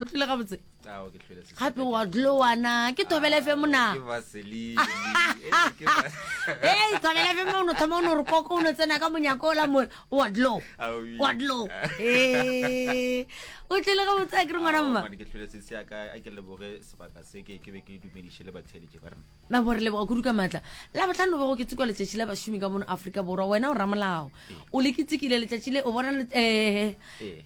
o tlile gabotse gape wa dlowana ke tobelefe mona ee tobelefe mo ono thoma ono re koko ono tsena ka monyako ola mo wa dlo wa dlo ee o tlile gabotse a kere ngwana mma Nabo, re leboga kudu ka matla. Labohlano bego ke tsekwa letšatši la bašomi ka mono Afrika Borwa. Wena o ramolao. O le kitsekile letšatši le o bona le eh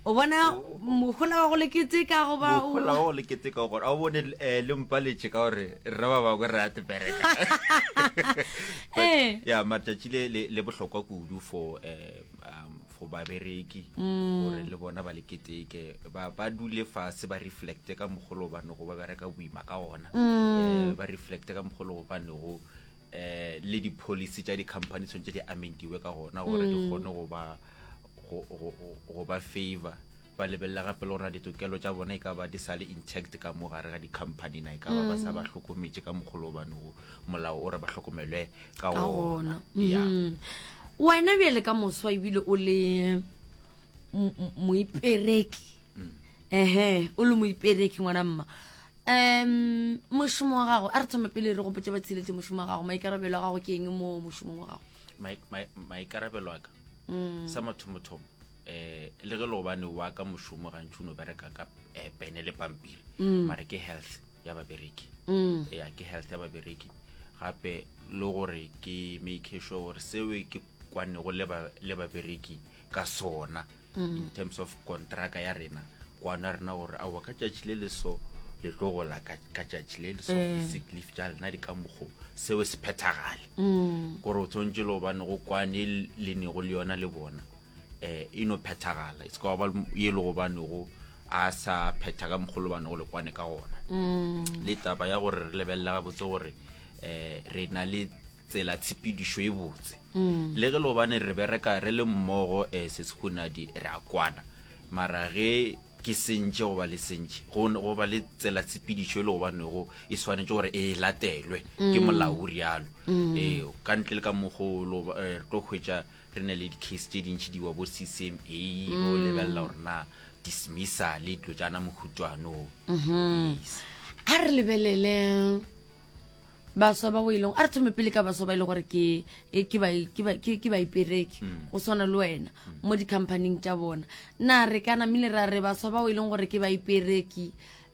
o bona mohola wa go le keteka go ba o Mohola wa go le keteka gore a o bone eh le mpaletše ka gore re ba bangwe re a tebereka. Eh. Ya matšatši le le bohlokwa kudu for eh um go babereki gore le bona ba le keteke ba ba dule fase ba reflecte ka mogolo ba nego ba bereka boima ka ona eh, ba reflecte ka mogolo ba nego eh le di policy tša di company tshwantse di amendiwe ka gona gore di kgone go ba go- go go- go ba favor Ba lebelela gape le gore na ditokelo tša bona e ka ba di sa le intact ka mo gare ga di-company na e ka ba ba sa ba mm. hlokometše ka mogolo obane o molao o re ba hlokomelwe ka ona mm-hmm. wena bjale ka moswa ebile o le moipereki mm. ehe o le moipereki ngwana mma um mošomo wa gago a re thoma pele re gopotse ba tsheletse mošomo wa gago maikarabelo a gago ke eng mo mošomong wa gago maikarabelo a ka mm. sa mathomothomo um le ge leobane wa ka mošomo gantši o no bereka ka eh, pene le pampiri mm. mare ke health ya babereki mm. ya ke health ya babereki gape le gore ke make sure gore seo ke kwanego le babereki ka sona mm. in terms of contracta ya rena kwana rena gore aowa ka tšatši le le so le tlo gola ka tšatši le le so eh. sicleaf ja lena di ka mokgo seo se phethagale mm. gore o tshwanetse le gobane go kwane le nego le yona le bona eh, e no phethagala e se ka ba ye le gobanego a sa phetha ka mogolo bane go lekwane ka gona mm. le taba ya gore re lebelela gabotse gore um re na le tsela tshepedišo e botse mm. le ge lobane re bereka re le mmogo um se sekhunadi re a kwana mara ge ke sentše goba le sentše goba le tsela tshepedišo e le gobanego e swanetše gore e latelwe ke mm. molao o rialo mm. ee ka ntle le ka mogo re tlo hwetša Re na le di-case tše dintši di wa bo CCMA go lebelela gore na dismissa le dilo tša na mohutšwane o. Yes. a re lebelele baswa ba o e leng a re thome pele ka baswa ba e le gore ke e- ke bai- ke bai- ke- ke baipereki go swana le wena mo di-companyng tša bona na re ka namile ra re baswa ba o e leng gore ke baipereki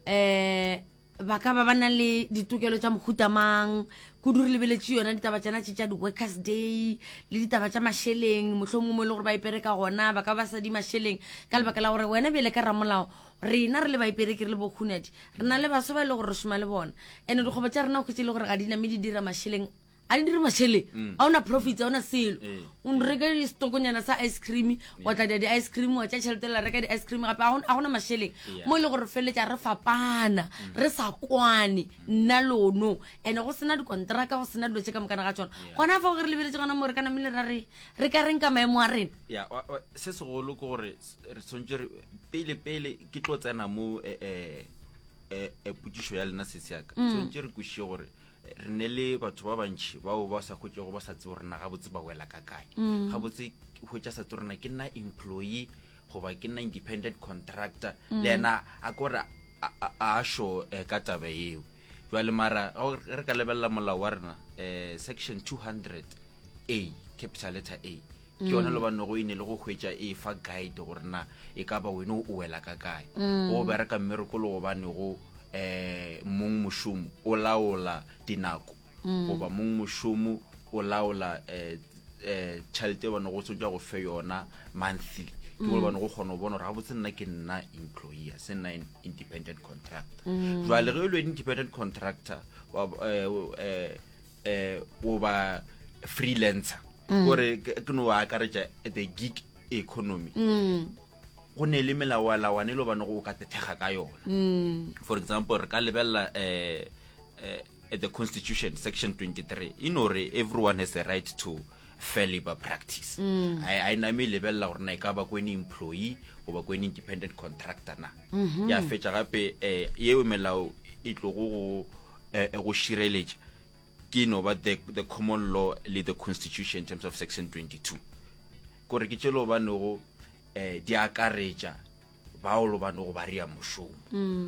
um ba ka ba ba nang le ditokelo tša mohuta mang kudu re lebeletše yona ditaba tšana tše tša di-workers day le ditaba tša mašeleng mohlho mongwe mo e le gore ba ipere ka gona ba ka ba sa di mašeleng ka lebaka la gore wena bjele ka ramolao rena re le baipereke re le bohunadi re na le baso ba e le gore re šoma le bona and-e dikgwebo tša rena o khwetse e le gore ga di name di dira mašeleng a di dire mašele mm. a ona profits a ona selo eh. o reke stokonyana sa ice cream wa tla dia di-ice cream wa tša tšhelete la reka di-ice cream gape a gona mašeleng mo e le gore feletša re fapana mm. re sa kwane mm. nna lono and go sena dikontraka go sena dilo tše ka mokana ga tsona gona fa go re lebeletse gona mo re ka namele ra re re ka reng ka maemo a rena ya se segolo ke gore re tshwanetse re pele pele ke tlo tsena mo eh, eh, eh, potsišo ya lena setseyaka tshwanetse re kwešiše gore re ne le batho ba bantšhi bao ba sa hwetšego ba sa tsebo rena gabotse ba wela ka kae mm. gabotse hwetša sa tse rena ke nna employee goba ke nna independent contractor mm. le ena a kore a sho eh, ka taba eo jwale mara re ka lebelela molao wa rena um section 200 a capital letter a ke yone mm. lobanego e ne le go hwetša e fa guide gore na e ka ba wene o wela ka kae mm. go bereka mmerekolo gobanego um eh, mong mošomo o laola dinako mm. goba mong mošomo o laola um eh, tšhelete e bane go tsotsa go fe yona monthly ke gore bane go kgona go bona gore ga botse nna ke nna employer se nna independent contractor jale ge e le independent contractor um eh o ba freelancer mm. gore ke no wa akaretša the gig economy mm. go ne le melawalawane e le bane go o ka tethega ka yona mm. for example re ka lebelela eh, eh, at the constitution section 23 e no re everyone has a right to fair labor practice mm. a e name e lebelela gore na e ka ba ko ene employee goba ko ene independent contractor na mm-hmm. ya fetša gape um yeo melao e tlogo go eh, eh, go šireletša ke no ba the, the common law le the constitution in terms of section 22 kore ke tšelo banego um eh, di akaretša baolo banego ba rea mošomo mm.